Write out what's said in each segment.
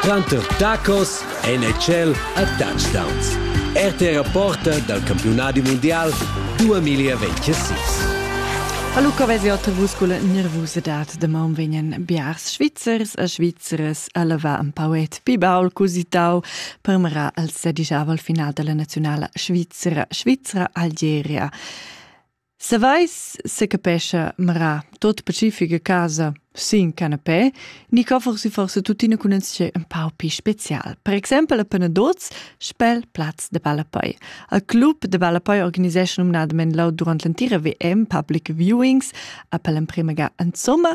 Tranter tacos en e tschel a touchdowns. RTR Porta dal campiunadi mundial 2026. A Luca vesi otta vus culla nervusadad da maun vegnan biars Svizzers e Svizzeres a leva un pauet pibaul cusitau per mera al sedigiava al final della nazionala svizzera Svizzera Algeria. Saveis secapescha mera tot pacifica casa sin canapé, ni co forse forse tuttina cunentscher un pau pi special. Per exempel a Penadoz spel plaz de ballapei. Al club de ballapei organisescha numnadament lau durant l'entira VM public viewings a per l'emprema ga insomma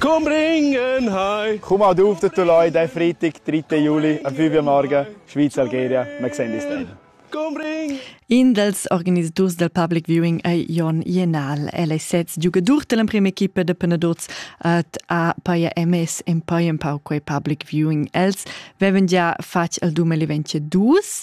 Komm ringen heim! Komm ad auf den Tuloi diesen Freitag, 3. Juli, am 5 Uhr morgen, Schweiz-Algeria. Wir sehen uns dann. Komm ring! In dels organisaturs del public viewing ei Jon Jenal. El ei sez giugadur dell'emprima equipa de penadots et ha paia emes en poi empau quei public viewing. Els veven già fatg el 2022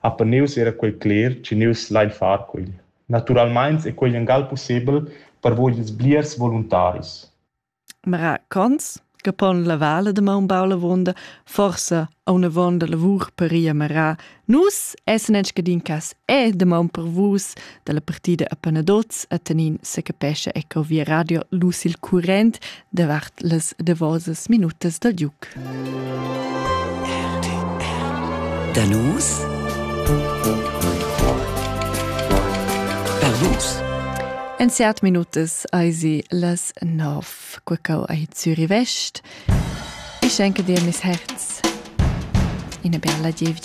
ha per nus era quei cler che nus lein far quei. Naturalmein è quei engal possibel per voi ils bliers voluntaris. Ma racconts che pon la vale de Maunbaula vonda forsa a una vonda lavur per ia marà. Nus essen en scadin cas e de maun per vus dalla partida a Panadoz a Tanin secapescha eco via radio lus il current davart las davosas minutas dal Duc. Danus Danus En seat minutas eisi las nov quacau ei Zürich West. Ich schenke dir mis Herz. Ina bella Gievgia.